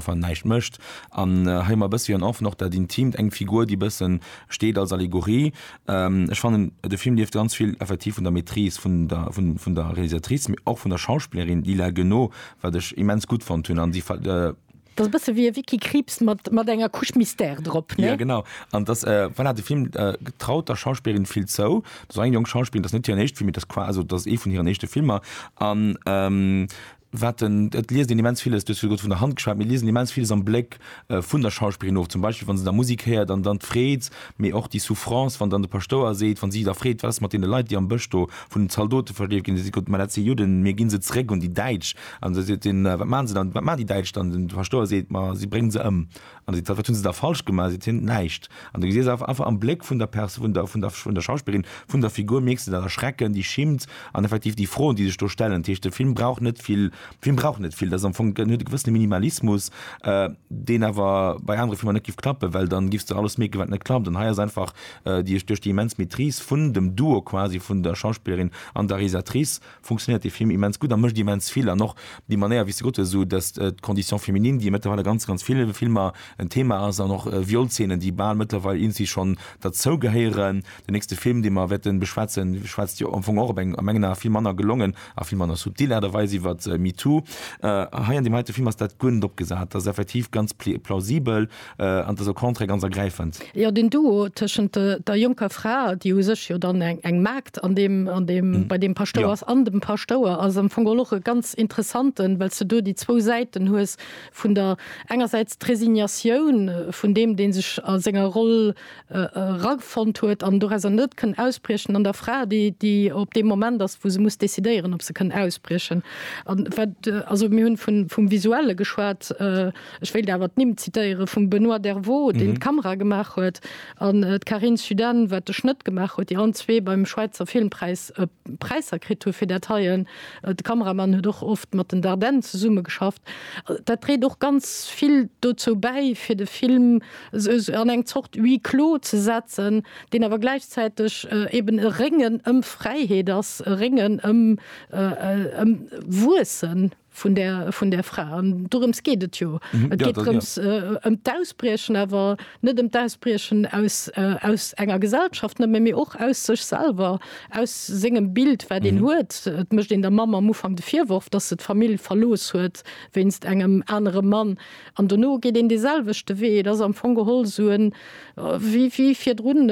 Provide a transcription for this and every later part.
wann näischt mécht an hei emmer e bëssi en Enfant, och dat Intimt, eng Figur déi e bësse steet als Allegorie. Ech fannen de Film lieft ganz vill effektiv vun der Maîtrise vun der vun der Réalisatrice, mee och vun der Schauspillerin Lila Guenot, wat ech immens gutt fonnt hunn an si. Dat ass e bësse wéi e Vicky Krieps mat mat enger Couche Mystère drop, ne? Jo genau an dass voilà de Film traut der Schauspillerin vill zou. Dat ass eng jonk Schauspillerin, dat ass net hiren éischte Film, mee dat ass qua also dat ass ee vun hiren éischte Filmer an. wat den, et liest een immens villes, du hues virdu vun der Hand geschwat, mir liesen immens villes am Bléck vun der Schauspillerin of, zum Beispill wa se da Musik héiert an dann d'Freed, mee och déi Souffrance, wann dann de Paschtouer seet, wa si da freet, wat ass mat deene Leit, déi am Bësch do vun den Zaldote verleeft ginn, da seet Gott, mä dat si Judden, mir gi se zeréck un déi Däitsch. An da seet hien, wat maachen se dann, wat maachen déi Däitsch dann? An de Paschtouer seet, ma si bréngen se ëm. An du sees, Wat hunn se da falsch gemaach? Seet hien, Näischt. An du gesiess einfach am Bléck vun der Pers-, vun der, vun der, vun der Schauspillerin, vun der Figur, mierks de dat Erschrecken, déi Schimmt an effektiv déi Froen, déi sech do stellen. Dat heescht, de Film brauch net vill, de Film brauch net vill. Dat ass am Fong, en huet e gewëssene Minimalismus, deen awer bei anere Filmer net géif klappen, well dann giffs de alles mierken, wat net klappt. An hei ass einfach, duerch déi immens Maîtrise vun dem Duo quasi vun der Schauspillerin an der Realisatrice, funktionéiert dee Film immens gutt a mécht immens vill. An och déi Manéier, wéi s de gesot hues, esou dass d'Condition féminine, déi mëttlerweil a ganz, ganz ville Filmer en Thema ass, an och Violszeenen, déi bal mëttlerweil iergendwéi schonn derzou gehéieren. Den nächste Film, dee mer wäerte beschwätzen, schwätzt jo am Fong och op eng a mengen Ae vill manner gelongen a vill manner subtil Aart a Weis iwwer MeToo. Hei an deem heite Film ass dat guer net opgesat. Dat ass effektiv ganz plausibel. An dëser Contrée ganz ergräifend. Jo, den Duo tëschent der jonker Fra, déi u sech jo dann eng Maagd an deem, an deem, bei deem Paschtouer ass, an dem Paschtouer ass am Fong och e ganz interessanten, well s du do déi zwou Säiten hues vun der, engersäits d'Resignatioun vun deem, dee sech a senger Roll erafonnt huet an dorauser net kënn ausbriechen, an der Fra, déi, déi op deem Moment ass, wou se muss decidéieren, ob se kënn ausbriechen. An wat, also mir hunn vun, vum Visuelle geschwat. Ech wéilt awer d'Nimm zitéiere vum Benoît Dervaux, deen d'Kamera gemaach huet, an d'Carine Suden, wat de Schnëtt gemaach huet, déi allen zwee beim Schwäizer Filmpräis Präisser kritt hu fir dat heie. De Kameramann huet och oft mat den Dardenne zesummegeschafft. Dat dréit och ganz vill dozou bäi, fir de Film esou an eng Zort Huis clos ze setzen, deen awer gläichzäiteg eeben e Réngen ëm Fräiheet ass, e Réngen ëm Wuessen. vun där vun där Fra an dorëms geet et jo. Et geet drëms ëm d'Ausbriechen, awer net ëm d'Ausbriechen aus aus enger Gesellschaft nëmme, mee och aus sech selwer, aus sengem Bild wat een huet. Et mécht een der Mamm am Ufank de Virworf, datt se d'Famill verlooss huet wéinst engem anere Mann an dono geet een dee selwechte Wee. Et ass am Fong geholl sou en wéi wéi virdrun,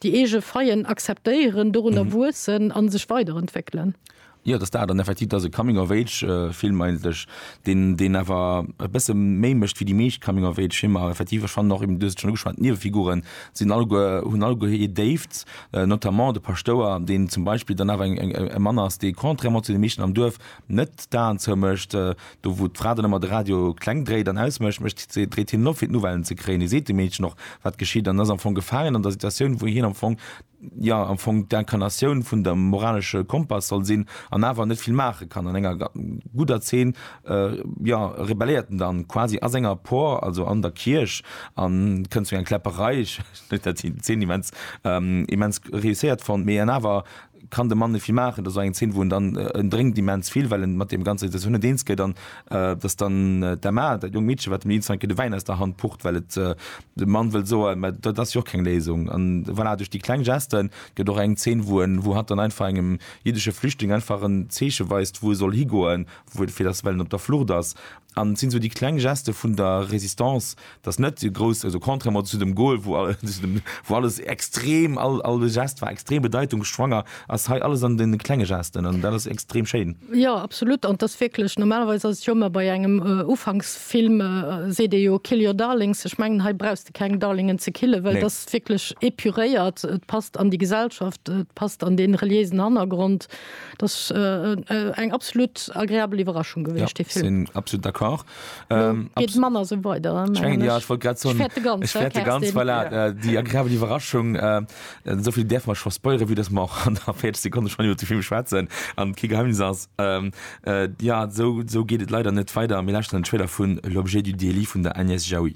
déi eege Faillen akzeptéieren, dorunner wuessen a sech weiderentwéckelen. Jo, et ass dat an effektiv et ass e Coming of Age Film eigentlech, deen deen awer e bësse méi mécht wéi déi meescht Coming of Age Filmer. Effektiv ech fannen och eben, du hues et schonn ugeschwat, d'Niewefiguren sinn alleguer, hunn alleguer hir Déift, notamment de Paschtouer, deen zum Beispill dann awer eng e Mann ass, dee contrairement zu de meeschten am Duerf net d'Aen zou mécht. Do wou d'Fra dann ëmmer de Radio kleng dréit an aus mécht, mécht si dréit hien en op fir d'Nouvellen ze kréien. Hie seet dem Meedchen och wat geschitt an ass am Fong gefaangen an der Situatioun wou hien am Fong jo am Fong d'Incarnatioun vun der moralesche Kompass soll sinn, an awer net vill maache kann. An enger gudder Zeen, jo, rebelléiert en dann quasi a senger Por, also an der Kierch, an et kënnt zu enger Kläpperei. Ech huet dat déi Zeen immens, immens réusséiert fonnt, mee an awer kann de Mann net vill maachen. Dat ass och eng Zeen, wou en dann, en drénkt immens vill, well en mat deem ganzer Situatioun net eens gëtt, an datt dann d'Emma, dat jonkt Meedche, wat dem Nils Reinke de Wäin aus der Hand pucht, well et De Mann wëllt soen, mä dat ass jo och keng Léisung. An voilà, duerch déi kleng Geste gëtt och eng Zeen, wou en, wou hatt dann einfach engem jiddesche Flüchtling einfach en Zeeche weist, wou e soll higoen, wou, fir datt, well en op der Flucht ass. An et sinn esou déi kleng Geste vun der Résistance, datt net déi grouss, also contrairement zu dem Gol, wou, wou alles extrem, all, all de Geste war extrem bedeitungsschwanger, ass hei alles an den klenge Gesten an dat ass extrem schéin. Jo absolut an et ass wierklech, normalerweis ass et jo ëmmer bei engem Ufanksfilm seet ee jo kill your darlings, ech mengen hei brauchs de keng Darlingen ze killen, well et ass wierklech epuréiert, et passt an déi Gesellschaft, et passt an dee reliéisen Hannergrond. Et ass eng absolut agreabel Iwwerraschung gewiescht dee Film. Jo sinn absolut d'accord. Elo geet et manner esou weider mengen ech. Ech fäerte ganz, voilà, déi agreabel Iwwerraschung. Esou vill däerfe mer scho spoilere vue dass mer och an der 40 Sekonne schonn iwwer de Film schwätzen an et kee Geheimnis ass. Jo, esou geet et leider net weider. Mir lauschteren den Trailer vun L'objet du délit vun der Agnès Jaoui.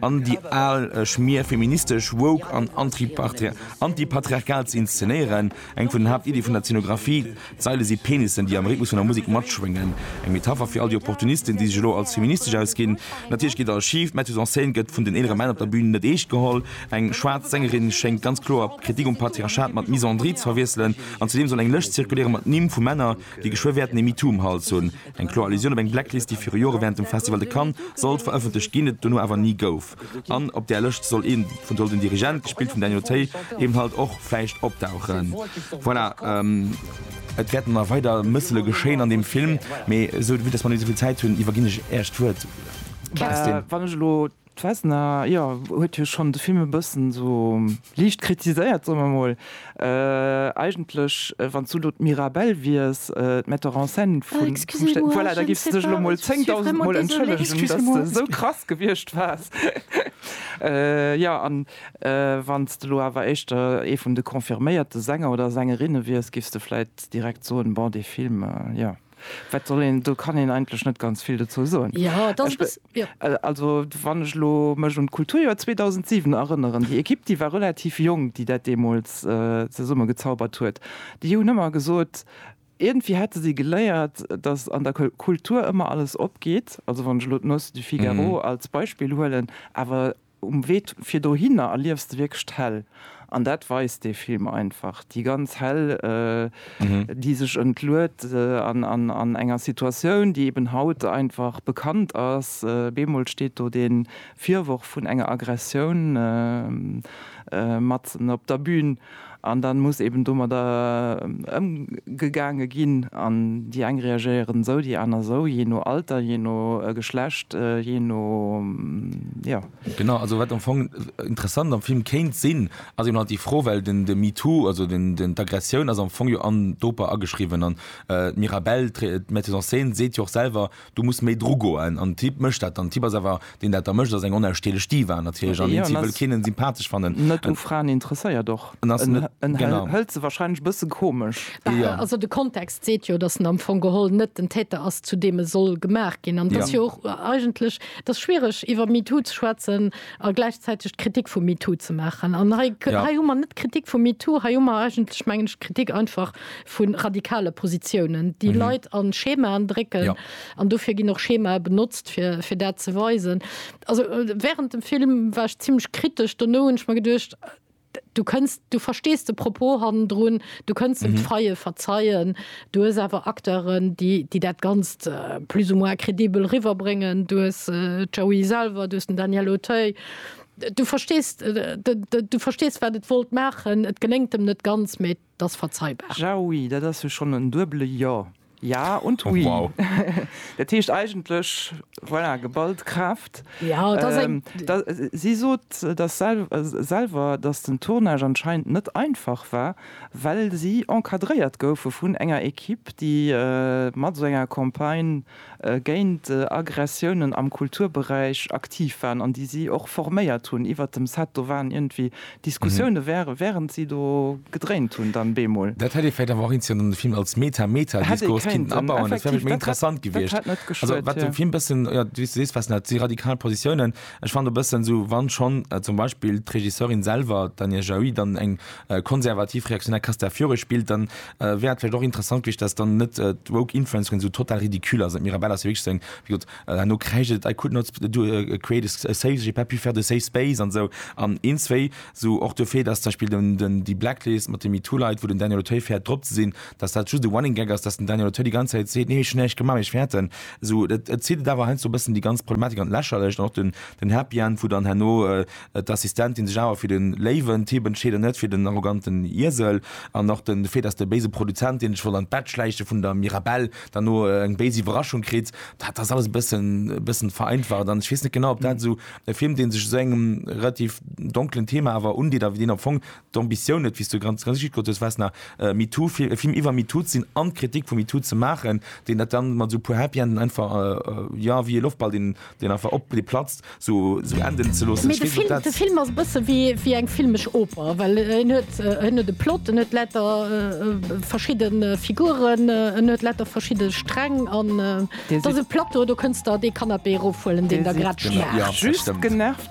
an déi al Schmier feministesch, woke an antipatriarchal ze inszenéieren. Eng vun den Haaptiddie vun der Zenographie, D'Saile si Penissen, déi am Rhythmus vun der Musek matschwéngen. Eng Metapher fir all déi Opportunisten, déi sech elo als feministesch ausginn. Natierlech geet alles schif, d'Metteuse en scène gëtt vun den eelere Männ op der Bün net eescht geholl. Eng schwaarz Sängerin schéngt ganz kloer Kritik um Patriarchat mat Misandrie ze verwiesselen. An zudeem soll eng Lëscht zirkuléiere mat Nimm vu Männer, déi geschwë wäerten ee MeToo um Hals hunn. Eng kloer Allusioun op eng Blacklist, déi viru Jore wärend dem Festival de Cannes sollt verëffentlecht ginn, et dono awer ni gouf. An op där Lëscht soll ee vun soll den Dirigent, gespillt vum Daniel Tay, eben halt och vläicht opdauchen. Voilà. Et wäerten nach weider Mëssele geschéien an deem Film, mee esou, vu dass mer net méi esou vill Zäit hunn, iwwerginn ech Äech d'Wuert, Kerstin. D'Vesna, jo, huet jo schonn de Film e bëssen esou liicht kritiséiert, soe mer mol. Eigentlech, wann s du elo d'Mirabelle wiers, d'Metteur en scène vum Stéck, voilà, da giffs du dech elo mol zéngdausend Mol entschëllegen, dass de esou krass gewiescht waars. Jo, a wann s de elo awer éischter ee vun de confirméierte Sänger oder Sängerinne wiers, giffs de vläit direkt soen, Bon, dee Film, jo. Wat soll een, do kann een eigentlech net ganz vill dozou soen. Also wann ech elo mech un d'Kulturjoer 2007 erënneren, déi Ekipp, déi war relativ jonk, déi dat deemools zesummegezaubert huet, déi hunn ëmmer gesot, iergendwéi hätte si geléiert, datt an der Kultur ëmmer alles opgeet, also wann ech elo d'Noce du Figaro als Beispill huelen, awer Um Wee fir dohinner erliefs de wierklech d'Häll. An dat weist dee Film einfach. Déi ganz Häll, déi sech entluet an enger Situatioun, déi eben haut einfach bekannt ass. Bemol steet do dee Virworf vun enger Aggressioun matzen op der Bün. An dann muss eben domadder ëmgegaange ginn. An déi eng reagéieren esou, déi aner esou, jee no Alter, jee no Geschlecht, jee no, jo. Genau, also wat am Fong interessant am Film kéint sinn, ass eben halt déi Fro, well den de MeToo, also den den d'Aggressioun ass am Fong jo an d'Oper ageschriwwen. An d'Mirabelle, d'Metteuse en scène, seet jo och selwer, Du muss méi dru goen an Typ mécht dat dann. Typ ass awer deen dat da mécht ass eng onausstehlech Diva natierlech an deen Typ wëll keen sympathesch fannen. Net u Fraen interesséiert och. En ass net genau. Hëlt se wahrscheinlech bësse komesch. Bah also de Kontext seet jo dass en am Fong geholl net den Täter ass zu deem e soll gemaach ginn an et ass jo och eigentlech et ass schwiereg iwwer MeToo ze schwätzen a gläichzäiteg d'Kritik vu MeToo ze maachen an hei hei hu mer net d'Kritik vu MeToo hei hu mer eigentlech mengen ech d'Kritik einfach vu radikale Positiounen, déi Leit a Schemaen drécken. An dofir ginn och Schemae benotzt, fir dat ze weisen. Also wärend dem Film war ech zimlech kritesch. Dono hunn ech mer geduecht, Du kënns, du verstees de Propos hannendrun, du kënns em d'Faille verzeien. Du hues awer Acteuren, déi dat Ganzt plus ou moins crédibel riwwerbréngen. Du hues d'Joey selwer, du hues den Daniel Auteuil. Du verstees, du verstees, wat et wollt maachen. Et geléngt em net ganz, mee. 't ass verzeibar. Ja, oui, dat ass jo schonn en duebele Jo, ja und oui. Dat heescht eigentlech, voilà, geballt Kraaft. Si sot selwer, datt den Tournage anscheinend net einfach war, well si encadréiert goufe vun enger Ekipp, déi mat esou enger Campagne géint Aggressiounen am Kulturberäich aktiv waren an déi si och forméiert hunn iwwert dem Set. Do waren iergendwéi Diskussioune während si do gedréint hunn dann bemol. Dat hätt ee vläicht awer och eenzeelen an de Film als Meta-Meta-Diskurs kinnten abauen, dat wär vläicht méi interessant gewiescht. Also wat dem Film e bëssen, jo, wéi s du sees, Fassnacht, déi radikal Positiounen, ech fannen e bëssen esou, wa schonn zum Beispill d'Regisseurin selwer, d'Anja Jaüi, dann eng konservativ-reaktionär Castafiore spillt, dann, Wäert vläicht och interessant gewiescht, dass dann net d'woke Influencerin esou total ridicule ass. D'Mirabella ass jo wierklech seng, wéi gesot, herno kräischt et, I could not create a safe, j'ai pas pu faire de safe space an esou an een, zwéi esou och de Fait, dass zum Beispill den déi Blacklist mat de MeToo Leit, wou den Daniel Auteuil fäert drop ze sinn, dass dat just e Running Gag ass, dass den Daniel Auteuil déi ganz Zäit seet, nee ech hunn näischt gemaach, mee ech fäerten esou. Et zitt et awer heiansdo e bëssen déi ganz Problematik an d'Lächerlecht an och den Happy End, wou dann herno, D'Assistentin sech awer fir den léiwen Typ entscheet an net fir den arroganten Iesel. An och den Fait, dass de béise Produzent, deen sech wollt an d'Bett schläiche vun der Mirabelle, dann no eng béis Iwwerraschung kritt, dat ass alles e bëssen, e bëssen vereinfacht. An ech weess net genau, ob dat esou e Film, dee sech esou engem relativ donkelen Thema awer undeet a wéi deen am Fong d'Ambitioun huet, wéi s du ganz richteg gesot hues, Vesna, e MeToo, e Film iwwer MeToo ze sinn an d'Kritik vu MeToo ze maachen, deen dat dann mat esou e puer Happy Enden einfach, jo, wéi e Loftball, deen einfach op, dee platzt, esou enden ze loossen. Ech weess net, ob dat. De Film ass e bësse wéi eng filmesch Oper, well en huet, en huet e Plot, en huet lauter verschidde Figuren, en huet lauter verschidde Sträng an et ass e Plateau, do kënns der dee Canapé erofhuelen, deen der grad schmaacht. Just genervt.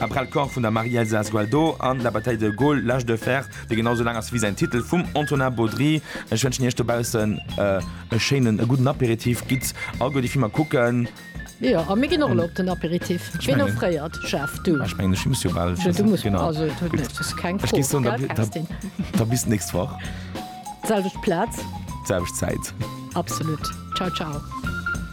Après le corps vun der Marie-Elsa Esgualdo a La bataille de Gaulle, l'âge de fer, dee genau esou laang ass wéi säin Titel, vum Antonin Baudry. Ech wënschen iech dobaussen e schéinen, e gudden Aperitif. Gitt all guer déi Filmer kucken. Jo, a mir ginn och elo op den Aperitif. Ween offréiert, Jeff? Du? Ech mengen, ech muss jo bal schëssen. Du muss bal, also et huet net, ass keng Fro, gell Kerstin? Da bis d'nächst Woch. Selwecht Plaz. Selwecht Zäit. Absolut. Ciao, ciao.